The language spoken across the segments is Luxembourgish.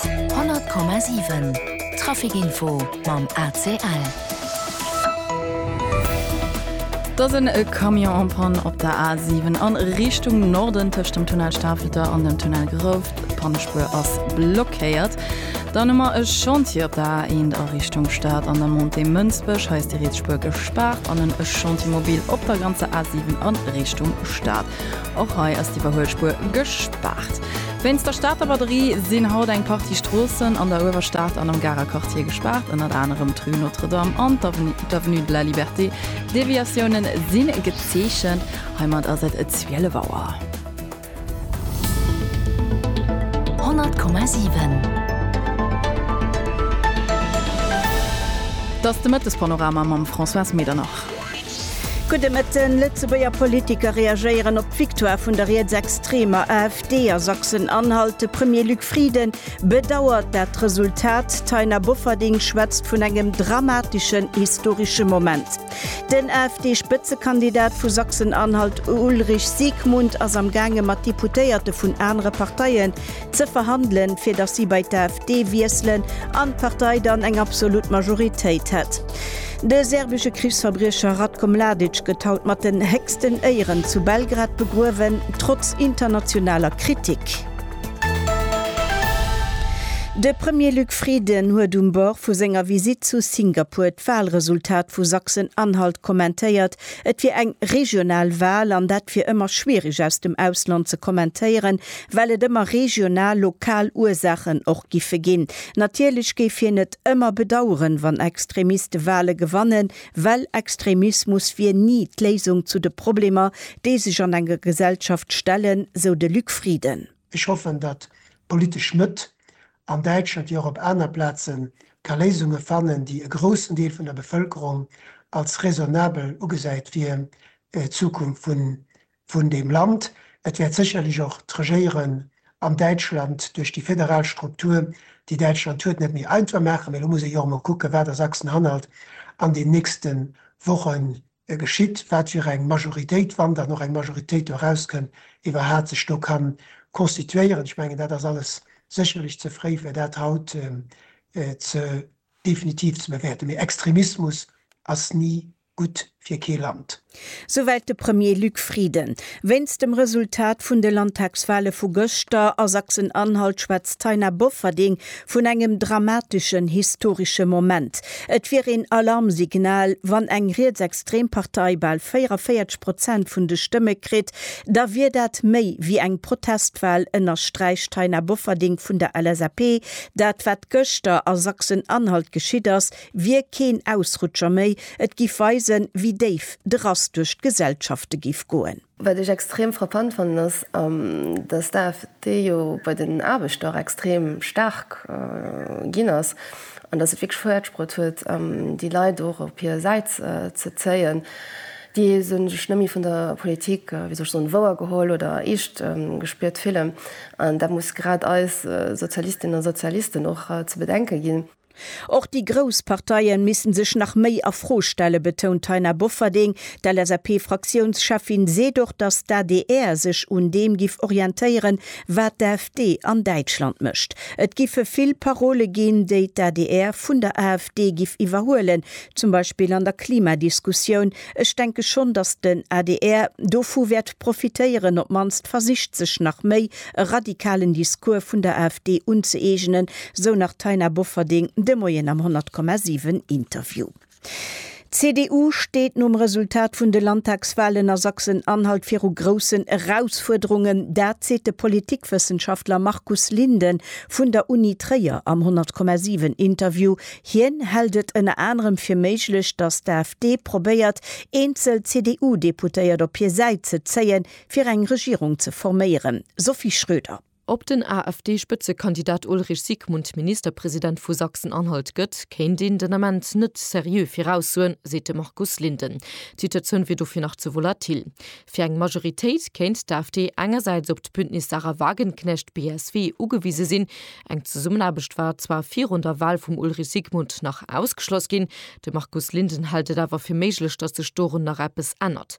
100,7 Trafic-Info mam ACL. Et ass e Camion en panne op der A7 a Richtung Norden tëscht dem Tunnel Stafelter an dem Tunnel Grouft. D'Pannespuer ass blockéiert. Dann hu mer e Chantier op der A1 a Richtung Stad an der Montée Mënsbech. Hei ass déi Rietsspuer gespaart an en Chantiermobil op der ganzer A7 a Richtung Stad. Och hei ass d'Iwwerhuelspuer gespaart. Wéinst der Stater Batterie sinn haut eng Partie Stroossen an der Uewerstad an am Garer Quartier gespaart, ënnert anerem d'Rue Notre-Dame an d'Avenue de la Liberté. Deviatiounen si gezeechent. Heimat ass et 12 Auer. 100,7. Dass de Mëttespanorama mam Françoise Medernach. Gudde Mëtten, Lëtzebuerger Politiker reagéieren op d'Victoire vun der rietsextremer AfD a Sachsen-Anhalt, de Premier Luc Frieden bedauert dat Resultat, d'Taina Bofferding schwätzt vun engem dramateschen historesche Moment. Den AfD-Spëtzekandidat vu Sachsen-Anhalt Ulrich Siegmund ass am gaange mat Deputéierte vun anere Parteien ze verhandelen, fir datt si bei d'AfD wiesselen an d'Partei dann eng absolut Majoritéit hätt. De serbesche Krichsverbriecher Ratko Mladic gëtt haut mat den héchsten Éieren zu Belgrad begruewen, trotz internationaler Kritik. De Premier Luc Frieden huet um Bord vu senger Visitt zu Singapur d'Walresultat vu Sachsen-Anhalt kommentéiert. Et wier eng regional Wal an dat wier ëmmer schwiereg aus dem Ausland ze kommentéieren, well et ëmmer regional, lokal Ursaachen och giffe ginn. Natierlech géif hien et ëmmer bedaueren, wann Extremiste Wahle gewannen, well Extremismus wier ni d'Léisung zu de Problemer, déi sech an enger Gesellschaft stellen, sou de Luc Frieden. Ech hoffen, datt d'politesch Mëtt an Däitschland, wéi och op aner Plazen, ka Léisunge fannen, déi e groussen Deel vun der Bevëlkerung als raisonnabel ugesäit fir d'Zukunft vun vun deem Land. Et wäert sécherlech och d'Regéieren an Däitschland duerch déi federal Struktur, déi Däitschland huet, net méi einfach maachen. Mee lo muss ee jo och emol kucken, wat a Sachsen-Anhalt an den nächste Woche geschitt, wat fir eng Majoritéit, wann dann och eng Majoritéit do erauskënn, iwwerhaapt sech do ka constituéieren. Ech mengen, dat ass alles sécherlech ze fréi, fir dat haut ze definitiv ze bewäerten. Mee Extremismus ass ni gutt fir kee Land. Souwäit de Premier Luc Frieden. Wéinst dem Resultat vun de Landtagswale vu gëschter a Sachsen-Anhalt schwätzt d'Taina Bofferding vun engem dramateschen historesche Moment. Et wier een Alarmsignal, wann eng rietsextrem Partei bal 44 Prozent vun de Stëmme kritt, da wier dat méi wéi eng Protestwal, ënnersträicht d'Taina Bofferding vun der LSAP. Dat wat gëschter a Sachsen-Anhalt geschitt ass, wier keen Ausrutscher méi, et giff weisen, wéi déif de Rass duerch d'Gesellschafte giff goen. Wat ech extrem frappant fannen ass, datt d'AFD jo bei den Aarbechter och extrem staark ginn ass an datt se et wierklech fäerdegbruet huet, déi Leit och op hir Säit ze zéien, déi sech net méi vun der Politik, wéi soll ech soen, wouer geholl oder eescht gespiert fillen. An dat muss grad eis Sozialistinnen a Sozialisten och ze bedenke ginn. Och déi grouss Parteien missten sech nach méi a Fro stellen, betount d'Taina Bofferding. D'LSAP-Fraktiounscheffin seet och, datt d'ADR sech un deem giff orientéieren, wat d'AfD an Däitschland mécht. Et giffe vill Parole ginn, déi d'ADR vun der AfD giff iwwerhuelen, zum Beispill an der Klimadiskussioun. Ech denke schonn, datt den adr dovu wäert profitéieren, op d'mannst versicht sech nach méi e radikalen Discours vun der AfD unzëeegenen, sou nach d'Taina Bofferding de Moien am 100,7 Interview. D'CDU steet nom Resultat vun de Landtagswalen a Sachsen-Anhalt viru groussen Erausfuerderungen, dat seet de Politikwëssenschaftler Markus Linden vun der Uni Tréier am 100,7 Interview. Hien hält et ënner anerem fir méiglech, datt d'AfD probéiert, eenzel CDU-Deputéiert op hir Säit ze zéien, fir eng Regierung ze forméieren, Sophie Schröder. Ob den AfD-Spëtzekandidat Ulrich Sigmund Ministerpresident vu Sachsen-Anhalt gëtt, kéint een den Ament net seriö viraussoen, seet de Markus Linden. D'Situatioun wier dofir nach ze volatil. Fir eng Majoritéit kéint d'AfD engersäits op d'Bündnis Sahra Wagenknecht, BSW, ugewise sinn. Eng Zesummenaarbecht war zwar virun der Wal vum Ulrich Sigmund nach ausgeschloss ginn. De Markus Linden hält et awer fir méiglech, datt sech dorun nach eppes ännert.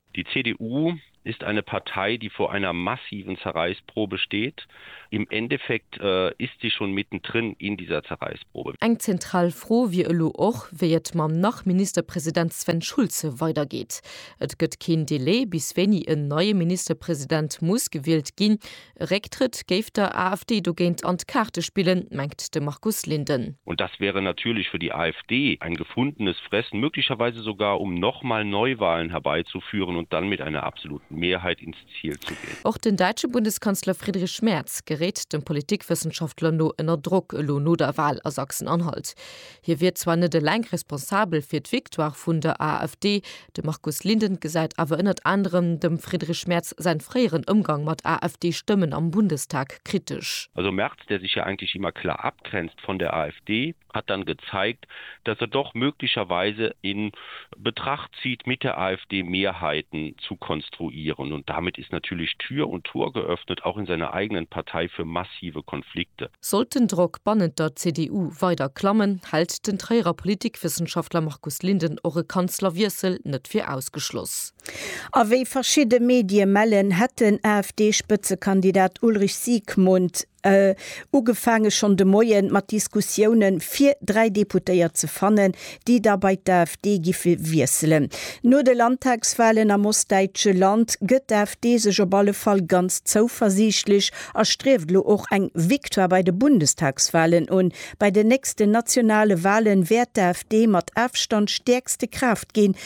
Die CDU ist eine Partei, die vor einer massiven Zerreißprobe steht. Im Endeffekt ist sie schon mittendrin in dieser Zerreißprobe. Eng zentral Fro wier elo och, wéi et mam Nach-Ministerpresident Sven Schulze weidergeet. Et gëtt keen Delai, bis wéini en neie Ministerpresident muss gewielt ginn. E Récktrëtt géif der AfD dogéint an d'Kaarte spillen, mengt de Markus Linden. Und das wäre natürlich für die AfD ein gefundenes Fressen, möglicherweise sogar um noch mal Neuwahlen herbeizuführen und dann mit einer absoluten Mehrheit ins Ziel zu gehen. Och den däitsche Bundeskanzler Friedrich Merz geréit dem Politikwëssenschaftler no ënner Drock, elo no der Wahl a Sachsen-Anhalt. Hie wier zwar net eleng responsabel fir d'Victoire vun der AfD, de Markus Linden gesäit awer ënnert anerem dem Friedrich Merz säin fréieren Ëmgang mat AfD-Stëmmen am Bundestag kritesch. Also Merz, der sich ja eigentlich immer klar abgrenzt von der AfD, hat dann gezeigt, dass er doch möglicherweise in. Betracht sie die Mitte AfD Mehrheiten zu konstruieren und damit ist natürlich Tür und Tor geöffnet, auch in seiner eigenen Partei für massive Konflikte. Sollt den Drock bannent der CDU weider klammen, hält den Tréierer Politikwëssenschaftler Markus Linden och e Kanzlerwiessel net fir ausgeschloss. A wéi verschidde Medie mellen, hätt den AfD-Spëtzekandidat Ulrich Siegmund, Ugefaange schonn de Moie mat Diskussiounen, fir dräi Deputéiert ze fannen, déi da bei d'AfD giffe wiesselen. No de Landtagswalen am ostdäitsche Land gëtt d'AfD sech op alle Fall ganz zouversiichtlech a strieft elo och eng Victoire bei de Bundestagswalen un. Bei den nächsten nationale Wale wäert d'AfD mat Afstand stäerkste Kraaft ginn,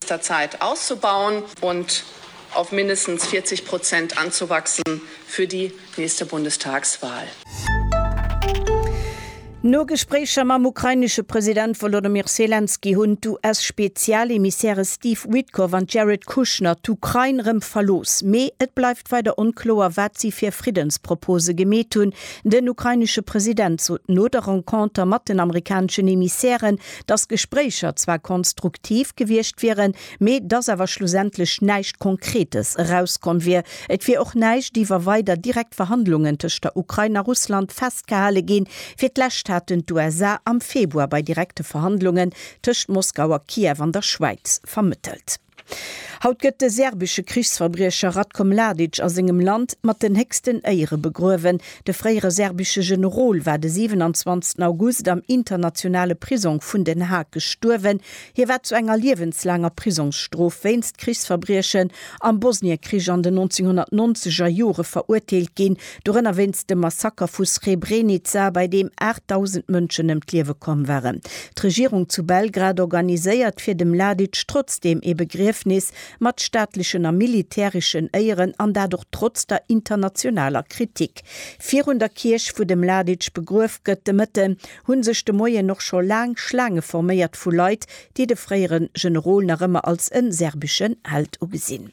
nächster Zeit auszubauen und auf mindestens 40 Prozent anzuwachsen für die nächste Bundestagswahl. No Gespréicher mam ukrainesche President Wolodymyr Selenskyj hunn d'US-Spezialemissäre Steve Witkoff an Jared Kushner d'Ukrain rëm verlooss. Mee et bleift weider onkloer, wat si fir Friddenspropose gemeet hunn. Den ukrainesche President sot no der Renconter mat den amerikaneschen Emissären, dass d'Gespréicher zwar konstruktiv gewiescht wieren, mee dass awer schlussendlech näischt Konkretes erauskomm wier. Et wier och näischt iwwer weider direkt Verhandlungen tëscht der Ukrain a Russland festgehale ginn. Fir d'lescht haten d'USA am Februar bei direkte Verhandlungen tëscht Moskau a Kiew an der Schwäiz vermëttelt. Haut gëtt de serbesche Krichsverbriecher Ratko Mladic a sengem Land mat den héchsten Éiere begruewen. De fréiere serbesche Generol war de 27 August am internationale Prisong vun Den Haag gestuerwen. Hie war zu enger liewenslaanger Prisongsstrof wéinst Krichsverbriechen am Bosniekrich an den 1990er Jore verurteelt ginn, Dorënner wéinst dem Massaker vu Srebrenica, bei deem 8.000 Mënschen ëm d'Liewe komm waren. D'Regierung zu Belgrad organiséiert fir de Mladic trotzdeem ee Begriefnis, mat staatlechen a militäreschen Éieren, an dat och trotz der internationaler Kritik. Virun der Kierch, wou de Mladic begruef gëtt, de Mëtten, hu sech de Moien och scho laang Schlaange forméiert vu Leit, déi de fréiere Generol nach ëmmer als e serbeschen Held ugesinn.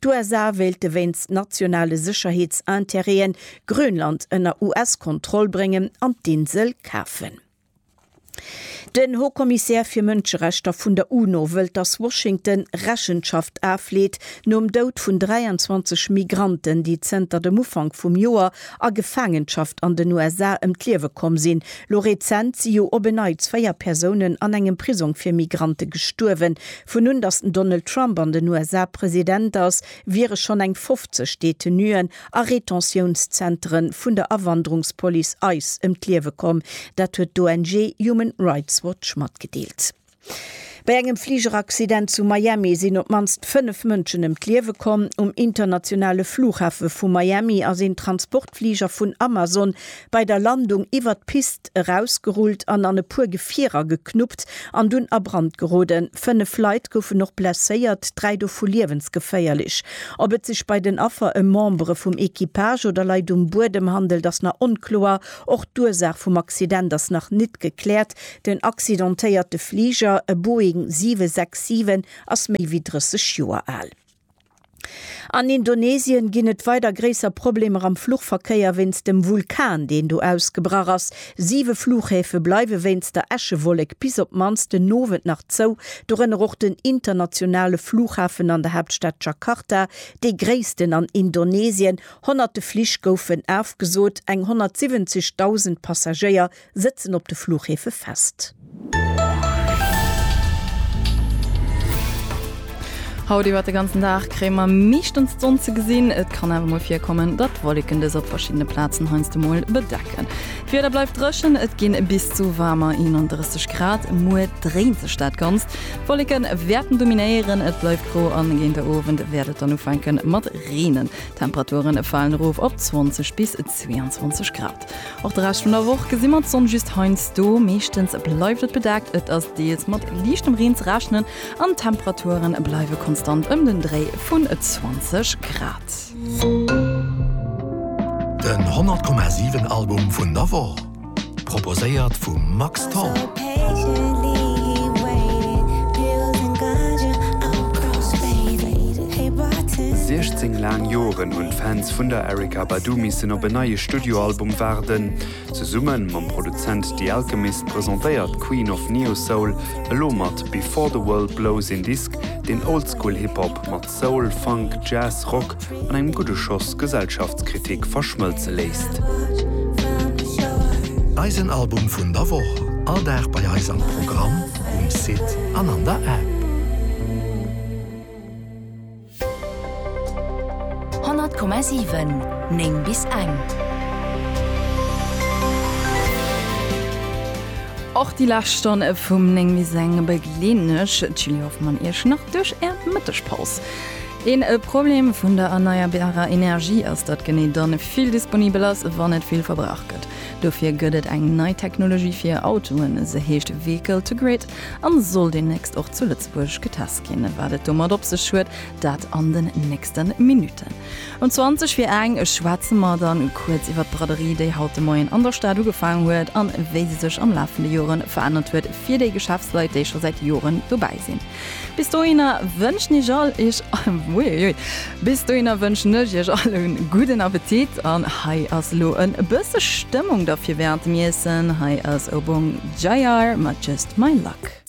D'USA wéilte wéinst nationale Sécherheetsinterêten Grönland ënner US-Kontroll bréngen an d'Insel kafen. Den Haut-Commissaire fir Mënscherechter vun der UNO wëllt, datt Washington Rechenschaft afleet nom Doud vun 23 Migranten, déi zënter dem Ufank vum Joer a Gefaangenschaft an den USA ëm d'Liewe komm sinn. Lo rezent si jo op en Neits véier Persounen an engem Prisong fir Migrante gestuerwen, Vun un datt den Donald Trump an den USA President ass, wiere schonn eng 50 Detenuen a Retentiounszentere vun der Awanderungspolice ice ëm d'Liewe komm. Dat huet d'ONG Human Rights Watch matgedeelt. Bei engem Fligeraccident zu Miami sinn op d'mannst fënnef Mënschen ëm d'Liewe komm. Um internationale Flughafe vu Miami ass een Transportflieger D'Fliger vun Amazon bei der Landung iwwert d'Pist erausgerullt an an e puer Gefierer geknuppt an dunn a Brand geroden. Fënnef Leit goufen och blesséiert, dräi dovu liewensgeféierlech. Ob et sech bei den Affer ëm Membere vum Equipage oder Leit um Buedem handelt, ass nach onkloer. Och d'Ursaach vum Accident ass nach nit gekläert. Den accidentéierte Fliger, e Boeing 767, ass méi wéi 30 Joer al. An Indonesien ginn et weider gréisser Problemer am Fluchverkéier wéinst dem Vulkan, deen do ausgebrach ass. Siwe Fluchhäfe bleiwe wéinst der Äschewollek bis op d'mannst den Owend nach zou, dorënner och den internationale Flughafen an der Haaptstad Jakarta, dee gréissten an Indonesien. Honnerte Flich goufen afgesot, eng 170.000 Passagéier Sëtzen op de Fluchhefe fest. Haut iwwert de ganzen Dag kréie mer meeschtens d'Sonn ze gesinn. Et kann awer mol virkommen, datt Wolleken dës op verschiddene Plazen heiansdo mol bedecken. D'Wieder bleift dréchen, et ginn bis zu waarmer 31 Grad. Muer dréint sech dat Ganzt, d'Wolleke wäerten dominéieren, et bleift gro an géint de Owend wäert et dann ufänke mat reenen. D'Temperature falen erof op 20 bis 22 Grad. Och de Rescht vun der Woch gesi mer d'Sonn just heiansdo, meeschtens bleift et bedaakt, et ass deels mat liichtem Reen ze rechnen an d'Temperature bleiwe konstant ëm den Dréi vun 20 Grad. Den 100,7 Album vun der Woch, proposéiert vum Max Tholl. Siechzéng laang Joren hunn d'Fans vun der Erykah Badu missen op en neie. Studioalbum waarden. Zesumme mam Produzent The Alchemist presentéiert d'Queen of Neo-Soul elo mat Before the World Blows een Disk, deen Oldschool Hip-Hop mat Soul, Funk, Jazz, Rock an engem gudde Schoss Gesellschaftskritik verschmëlze léisst. Eisen Album vun der Woch, all Dag bei eis am Programm, um Site an an der App. 100,7 9 bis eng. Och déi lescht Stonn vum 9 bis eng begleeden ech, d'Julie Hoffmann, Iech nach duerch Är Mëttegpaus. Een Problem vun der erneierbarer Energie ass, datt genee dann vill disponibel ass, wann et vill verbraucht gëtt. Dofir gëtt et eng nei Technologie fir Autoen, se heescht Vehicle to Grid. getest an soll demnächst och zu Lëtzebuerg getest ginn. Wat et domat op sech huet, dat an den nächsten Minuten. Um 20 fir eng schwätzen mer dann kuerz iwwert d'Braderie, déi haut de Moien an der Stad ugefaang huet an wéi se sech am Laf vun de Joren verännert huet fir déi Geschäftsleit déi scho säit Joren dobäi sinn. Bis dohinner wënschen ech all iech. Uiuiui. Bis dohinner wënschen ech iech all en gudden Appetit an hei ass elo en bësse Stëmmung da fir während dem Iessen. Hei ass Obong Jayar mat Just My Luck.